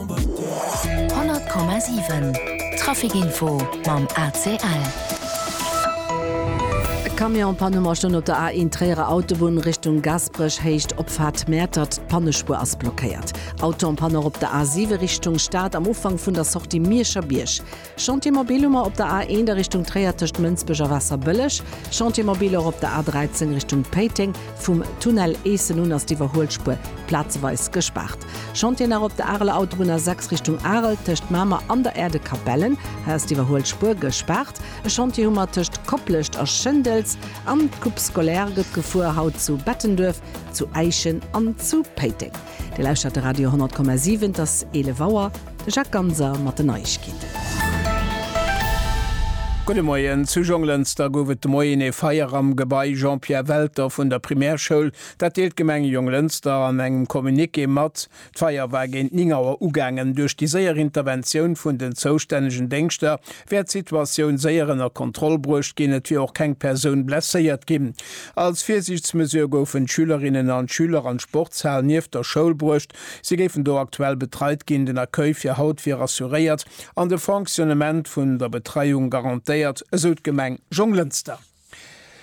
100,7 Trafic-Info mam ACL. E Camion pannt um Erstonn op der A1 Tréierer Autobunn Richtung Gasperech, Héicht Opfaart Mäertert. D'Pannespuer ass blockéiert. Auto en panne och op der A7 Richtung Stad am Ufank vun der Sortie Mierscher Bierg. Chantier Mobilhummer op der A1 a Richtung Tréier tëscht Mënsbech a Waasserbëlleg. Chantier Mobilhor op der A13 Richtung Péiteng. Vum Tunnel Eessen un ass d'Iwwerhuelspuer plazeweis gespaart. Chantier nach op der Areler Autobunn A6 Richtung Arel tëscht Mamer an der Aire de Capellen. Hei ass d'Iwwerhuelspuer gespaart. E Chantier hu mer tëscht Koplescht a Schëndels. An d'Coupe scolaire gëtt gefuer, haut zu Bettenduerf, zu Äischen an zu Péiteng. Dir lauschtert de Radio 100,7, et ass 11 Auer. De Jacques Ganser mat den Neiegkeeten. Gudde Moien. Zu Jonglënster gouf et de Moien ee Feier am Gebai Jean-Pierre Welter vun der Primärschoul. Dat deelt d'Gemeng Jonglënster an engem Communiqué mat. D'Feier war géint 9 Auer ugaangen. Duerch déi séier Interventioun vun den zoustännegen Déngschter wär d'Situatioun séier ënner Kontroll bruecht ginn. Et wier och keng Persoun blesséiert ginn. Als Virsiichtsmesure goufen d'Schülerinnen an d'Schüler an d'Sportshal nieft der Schoul bruecht, Si géifen do aktuell betreit ginn. Den Accueil fir haut wier assuréiert an de Fonctionnement vun der Betreiung garantéiert, esou d'Gemeng Jonglënster.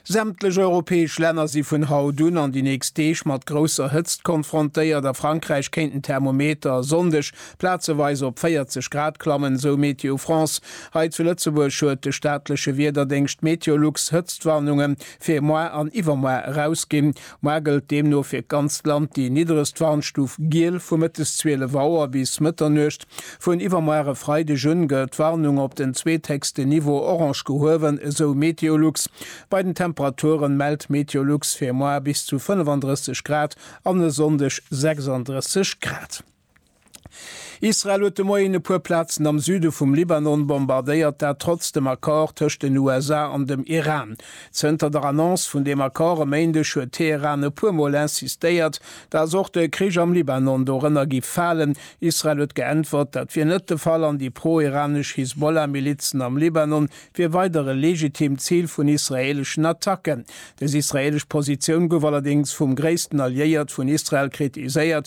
Sämtlech europäesch Länner si vun haut un an déi nächst Deeg mat grousser Hëtzt konfrontéiert. A Frankräich kéinten d'Thermometer e Sonndeg plazeweis op 40 Grad klammen, esou Météo France. Hei zu Lëtzebuerg huet de staatleche Wiederdéngscht Meteolux Hëtztwarnunge fir moar an iwwermoar erausginn. Moar gëllt deemno fir d'ganzt Land déi niddregst Warnstuf Giel vu mëttes 12 Auer bis Mëtternuecht. Vun iwwermoar e Freideg un gëllt d'Warnung op den zweethéchsten Niveau orange gehuewen, esou Meteolux. Bei den Temperaturen mellt Meteolux fir moar bis zu 35 Grad an e Sonndeg 36 Grad. Israel huet de Moien e puer Plazen am Süde vum Libanon bombardéiert, dat trotz dem Accord tëscht den USA an dem Iran. Zënter der Annonce vun deem Accord e Méindeg huet Teheran e puer Mol insistéiert, datt och de Krich am Libanon dorënner géif falen. Israel huet geäntwert, dat wier net de Fall an déi pro-iranesch Hisbollah-Milizen am Libanon wier weider e legitimt Zil vun israeeleschen Attacken. Dës israeelesch Positioun gouf allerdéngs vum gréissten Alliéiert vun Israel kritiséiert,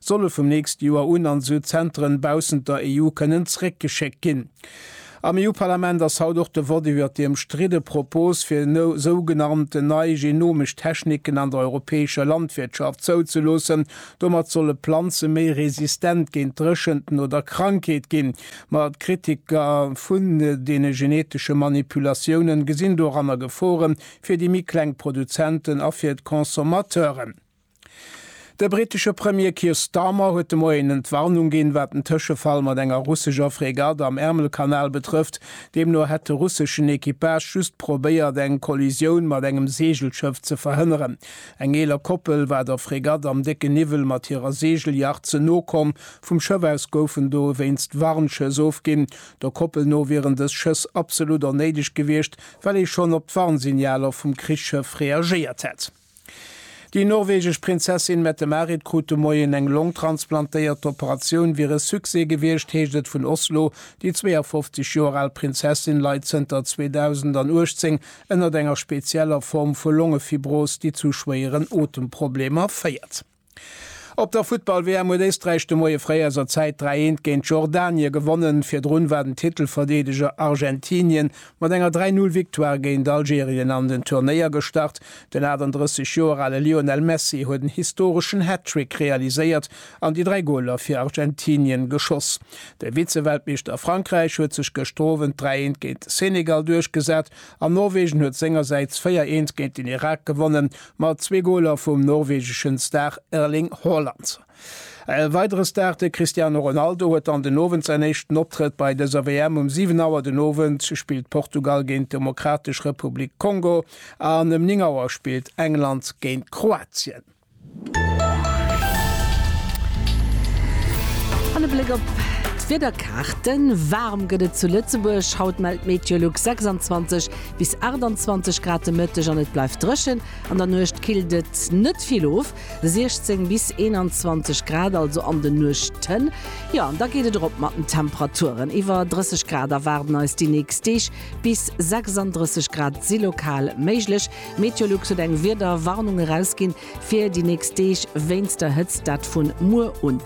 solle vum nächste Joer un an esou Zenteren baussent der EU kënnen zréckgeschéckt ginn. Am EU-Parlament ass haut och de Vott iwwert déi ëmstridde Propos, fir sougenannt nei genomesch Techniken an der europäescher Landwirtschaft zouzeloossen. Domat solle Planze méi resistent géint Dréchenten oder Krankheet ginn. Ma d'Kritiker vun deene genetesche Manipulatiounen gesinn doranner Gefore fir déi méi kleng Produzenten a fir d'Consommateuren. De brittesche Premier Keir Starmer huet de Moien Entwarnung ginn, wat den Tëschefall mat enger russescher Fregatt am Ärmelkanal betrëfft. Deemno hätt de russeschen Equipage just probéiert, eng Kollisioun mat engem Seegelschëff ze verhënneren. Eng eeler Koppel war der Fregatt am décken Niwwel mat hirer Seegelyacht ze no komm. Vum Schëff aus goufen dowéinst Warnschëss ofginn. Der Koppel no wieren dës Schëss absolut onnéideg gewiescht, well ee schonn op d'Warnsignaler vum Krichsschëff reagéiert hätt. Déi norwegesch Prinzessin Mette-Marit krut de Moien eng Long transplantéiert. D'Operatioun wier e Succès gewiescht, heescht et vun Oslo. Déi 52 Joer al Prinzessin leit zënter 2018 ënnert enger spezieller Form vu Longefibros, déi zu schwéieren Otemproblemer féiert. Op der Futtball-WM huet Éisträich de Moie fréi eiser Zäit 3, 1 géint Jordanie gewonnen. Virdrun war den Titelverdeedeger Argentinien mat enger 3, 0 Victoire géint Algerien an den Turnéier gestart. Den 38 Joer ale Lionel Messi huet en historeschen Hattrick realiséiert an déi 3 Goler fir Argentinien geschoss. De Vize-Weltmeeschter Frankräich huet sech gëschter Owend 3, 1 géint de Senegal duerchgesat an Norwegen huet sengersäits 4, 1 géint den Irak gewonnen. Mat zwee Goler vum norwegeschen Star Erling Haaland. E weidere Star, de Cristiano Ronaldo, huet dann den Owend säin éischten Optrëtt bei dëser WM. Um 7 Auer den Owend spillt Portugal géint d'Demokratesch Republik Kongo an ëm 9 Auer spillt England géint Kroatien. An e Bléck op d'Wiederkaarten, Waarm gëtt et zu Lëtzebuerg, haut mellt Meteolux 26. Bis 28 Grad de Mëtteg an et bleift dréchen. An der Nuecht killt et net vill of, 16 bis 21 Grad also an de Nuechten. Jo an da geet et erop mat den Temperaturen. Iwwer 30 Grad erwaarden eis déi nächst Deeg, bis 36 Grad si lokal méiglech. Meteolux huet eng Wiederwarnung erausginn fir déi nächst Deeg wéinst der Hëtzt, dat vun muer un.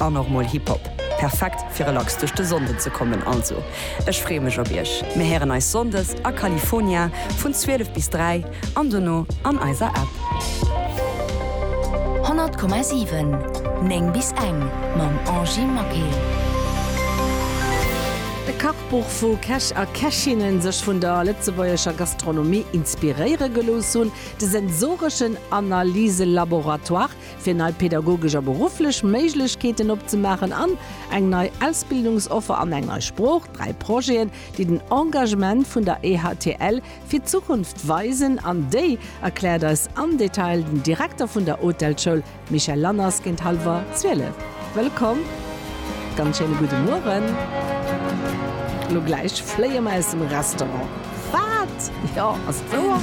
An och mol Hip Hop. Perfekt fir relax duerch de Sonnden ze kommen. Also ech freeë mech op iech. Mir héieren eis Sonndes a California vun 12 bis 3 an dono an eiser App. 100,7 9 bis eng mam Angy Maquil. E Kachbuch wou Käch a Kächinnen sech vun der lëtzebuergescher Gastronomie inspiréiere gelooss hunn, de sensoreschen Analyselaboratoire, fir nei pedagogesch a berufflech Méiglechkeeten opzemaachen an eng nei Ausbildungsoffer an eng nei Sprooch, dräi Projeten, déi den Engagement vun der EHTL fir d'Zukunft weisen an déi, erkläert eis am Detail den Direkter vun der Hotelschoul, Michel Lanners, géint hallwer zwielef. Wëllkomm, ganz schéine gudde Mueren. Lo gläich fléie mer aus dem Restaurant. Wat? Jo, ass et wouer?